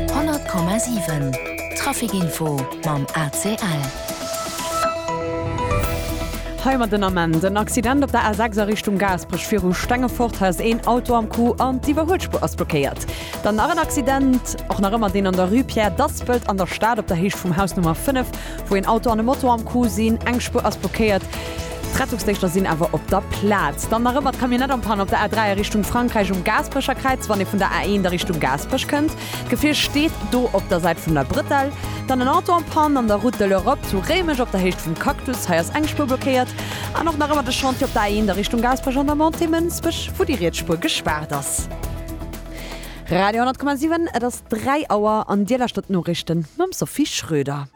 100,7 Traficinfo mam ACL. Hei mat den Ament, En Accident op der A6 a Richtung Gaasperech, viru Stengefort ass een Auto am Coup an d'Iwwerhuelspur ass blockéiert. Dann nach en Accident, och nach ëmmer deen an der Rue Pierre Daspelt an der Stad op der Héicht vum Haus Nummer 5, wou een Auto an e Moto am Coup sinn, eng Spur ass blockéiert. D'Rettungsdéngschter sinn awer op der Plaz. Dann nach ëmmer d'Camionnette am Panne op der A3 a Richtung Frankräich um Gaasperecher Kräiz, wann ee vun der A1 a Richtung Gaasperech kënnt. D'Gefier steet do op der Säit vun der Brëtell. Dann en Auto am Panne an der Route de l'Europe zu Réimech op der Héicht vum Cactus. Hei ass eng Spuer blockéiert. An och nach ëmmer de Chantier op der A1 a Richtung Gaasperech an der Montée Mënsbech, wou déi riets Spuer gespaart ass. Radio 10,7, et ass 3 Auer an Dir lauschtert d'Noriichten mam Sophie Schröder.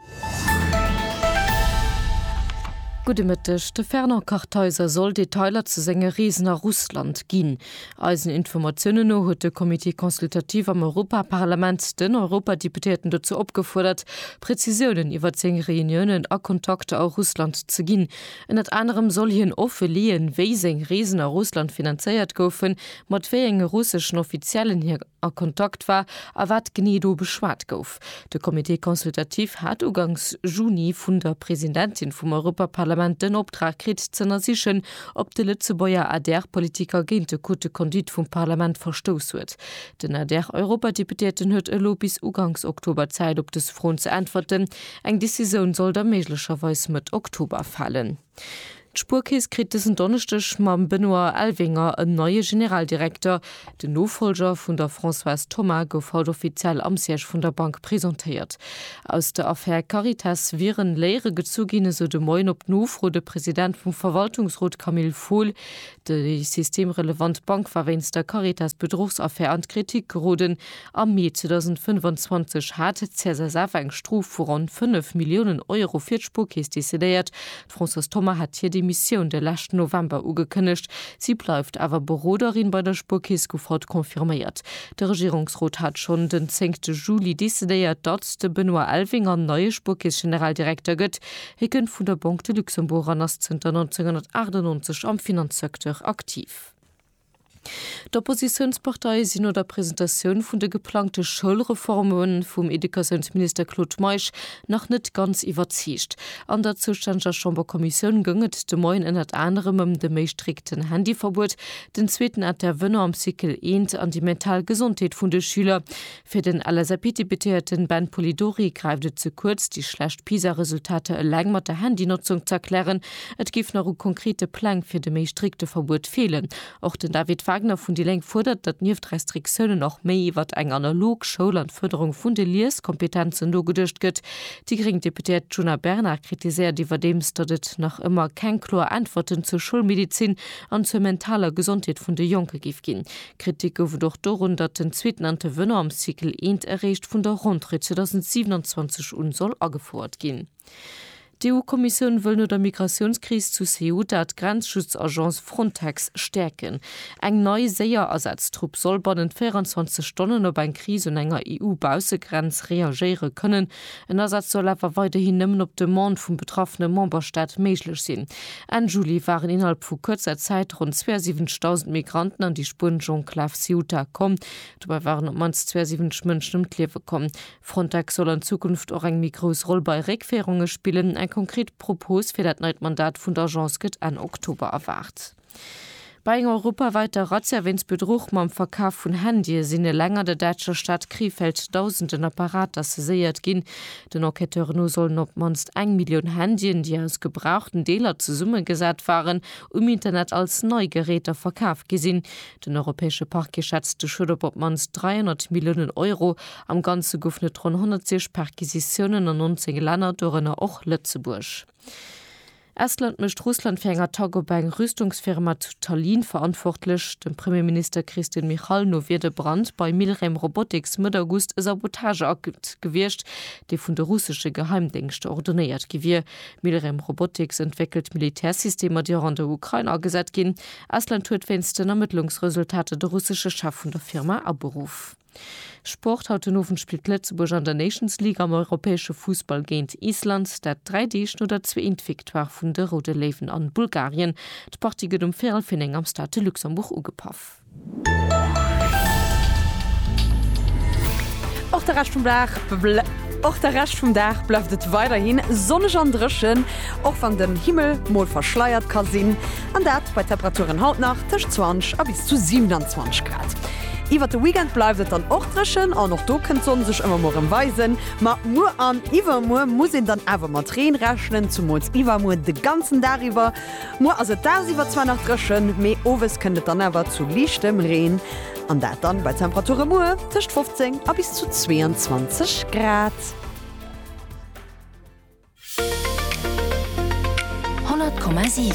Gudde Mëtteg, De Fernand Kartheiser soll Detailer zu senge Reesen a Russland ginn. Eisen Informatiounen no huet de Comité consultatif am Europaparlament den Europadeputéierten dozou opgefuerdert, Prezisiounen iwwert seng Reuniounen a Kontakter a Russland ze ginn. Ënnert anerem soll hien offe leeën, wéi seng Reesen a Russland finanzéiert goufen, mat wéi enge russeschen Offiziellen hie. a Kontakt war a wat genee do beschwat gouf. De Comité consultatif hat ugangs Juni vun der Presidentin vum Europaparlament den Optrag kritt, z'ënnersichen, ob de Lëtzebuerger ADR-Politiker géint de Code de conduite vum Parlament verstouss huet. Den ADR-Europadeputéierten huet elo bis ugangs Oktober Zäit, op dës Froen ze äntwerten. Eng Decisioun soll da méiglecherweis Mëtt Oktober falen. D'Spuerkeess kritt dësen Donneschdeg mam Benoît Elvinger en neie Generaldirekter. Den Nofollger vun der Françoise Thoma gouf haut offiziell am Siège vun der Bank presentéiert. Aus der Affär Caritas wieren Léiere gezu ginn, esou de Moien op Nofro de President vum Verwaltungsrot Camille Fohl. Déi systemrelevant Bank war wéinst der Caritas-Bedruchsaffär an d'Kritik geroden, Am Mee 2025 hat d'CSSF eng Strof vu ronn 5 Milliounen Euro fir d'Spuerkeess decidéiert. D'Françoise Thoma hat hir Demissioun de leschten November ugekënnegt. Si bleift awer Beroderin bei der Spuerkeess, gouf haut confirméiert. De Regierungsrot hat schonn den zéngte Juli decidéiert, datt de Benoît Elvinger neie Spuerkeess-Generaldirekter gëtt. Hie kënnt vun der Banque de Luxembourg an ass zënter 1998 am Finanzsecteur aktiv. D'Oppositiounsparteie sinn no der Presentatioun vun de geplangte Schoulreforme vum Educatiounsminister Claude Meisch nach net ganz iwwerzeegt. An der zoustänneger Chamberkommissioun goung et de Moien ënnert anerem ëm de méi strikten Handyverbuet, den zweeten Intervenant am Cycle eent an déi mental Gesondheet vun de Schüler. Fir den LSAP-Deputéierten Ben Polidori gräift et ze kuerz, déi schlecht PISA-Resultater eleng mat der Handynotzung ze erklären. Et géif nach u konkrete Pläng fir de méi strikte Verbuet feelen. Och den David Wagner vun déi Lénk fuerdert, datt nieft Restriktiounen och méi iwwert eng analog Schoul an d'Fërderung vun de Lieskompetenzen nogeduecht gëtt. Déi gréng Deputéiert Djuna Bernard kritiséiert iwwerdeems, datt et nach ëmmer keng kloer Äntwerten zur Schoulmedezin an zur mentaler Gesondheet vun de Jonke géif ginn. Kritik gouf et och dorun, datt den zweeten Intervenant am Cycle eent eréischt vun der Rentrée 2027 un soll agefouert ginn. D'EU-Kommissioun wëll no der Migratiounskris zu Ceuta d'Grenzschutzagence Frontex stäerken. Eng nei, séier Asaztrupp soll bannent 24 Stonnen op eng Kris un enger EU-Baussegrenz reagéiere kënnen, En Asaz soll awer weiderhin nëmmen op Demande vum betraffene Memberstaat méiglech sinn. Enn Juli waren innerhalb vu kuerzer Zäit ronn 72.000 Migranten an déi spuenesch Enklav Ceuta komm. Dobäi waren op d'mannst 72 Mënschen ëm d'Liewe komm. Frontex soll an Zukunft och eng méi grouss Roll bei Réckféierunge spillen. Eng konkret Propos fir dat neit Mandat vun der Agence gëtt Enn Oktober erwaart. Bei enger europawaiter Razzia wéinst Bedruch mam Verkaf vun Handye sinn eleng an der däitscher Stad Krefeld Dausenden Apparater saiséiert ginn. Den Enquêteuren no sollen op d'mannst eng Millioun Handyen, déi aus gebrauchten Deeler zesummegesat waren, um Internet als nei Geräter verkaf gi sinn. Den europäesche Parquet schätzt de Schued op op d'mannst 300 Milliounen Euro. Am Ganze goufen et ronn 106 Perquisitiounen an 19 Länner, dorënner och Lëtzebuerg. Estland mécht Russland fir eng Attack op eng Rüstungsfirma zu Tallinn verantwortlech. Dem Premierminister Kristen Michal no wier de Brand bei Milrem Robotics Mëtt August e Sabotageakt gewiescht, dee vun de russesche Geheimdéngschter ordonéiert gi wier. Milrem Robotics entwéckelt Militärsystemer, déi och an der Ukrain agesat ginn. Estland huet wéinst den Ermëttlungsresultater de russesche Chef vun der Firma aberuff. Sport, Haut den Owend spillt Lëtzebuerg an der Nations League am europäesche Fussball géint Island. Dat dräi Deeg no der zwee int Victoire vun de Roude Léiwen an Bulgarien. D'Partie gëtt um Véierel vir néng am Stade de Luxembourg ugepaff. Och de Rescht vum Dag och de Rescht vum Dag bleift et weiderhi sonneg an dréchen, och wann den Himmel mol verschleiert ka sinn. An dat bei Temperaturen haut nach tëscht 20 a bis zu 27 Grad. Iwwert de Weekend bleift et dann och dréchen an och do kënnt d'Sonn sech ëmmer mol rëm weisen. Ma muer an iwwermuer muss een dann awer mat Reen rechnen, zumools iwwermuer de ganzen Dag iwwer. Muer ass et dagsiwwer zwar nach dréchen, mee owes kënnt et dann awer zu liichtem Reen an dat dann bei Temperature muer tëscht 15 a bis zu 22 Grad. 100,7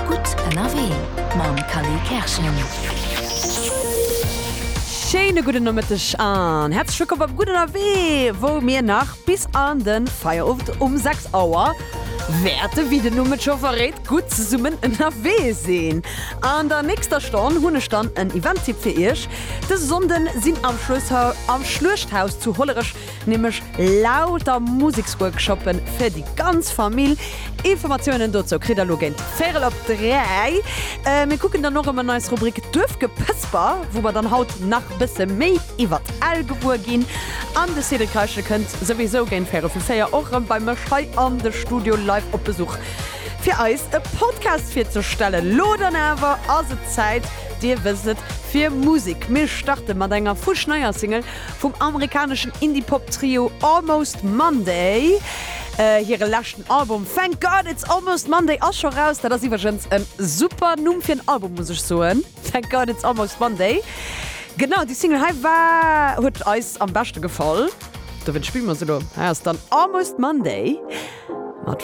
Gutt ënnerwee mam Cally Kerschen. Schéine gudden Nomëtteg an häerzlech wëllkomm beim Gutt ënnerwee, wou mir nach bis an de Feierowend um 6 Auer wäerte, wéi den Numm et scho verréit, gutt zesummen ënnerwee sinn. An der nächster Stonn hunn ech dann en Event-Tipp fir Iech. Dëse Sonnden sinn am Schlueshaus zu Hollerech nämlech lauter Museksworkshoppe fir déi ganz Famill. Informatiounen dozou kritt der elo géint véirel op dräi. Mir kucken dann och ëm an eis Rubrik Duerfgepësper, wou mer dann haut nach bësse méi iwwer d'Ell gewuer ginn. An de Cédric Reichel kënnt souwisou géint véirel vu véier och erëm bei mech hei an de Studio live op Besuch, fir eis e Podcast virzestellen. Lo dann awer ass et Zäit, Dir wësst et, fir Musek. Mir starte mat enger fuschneier Single Vum amerikaneschen Indie-Pop Trio Almost Monday. Hire leschten Album Thank God It's Almost Monday ass scho raus. Dat ass iwwergens e super Numm fir en Album muss ech soen, Thank God It's Almost Monday. Genau déi Single hei war huet eis am beschte gefall. Dowéint spille mer se elo. Hei ass dann Almost Monday mat.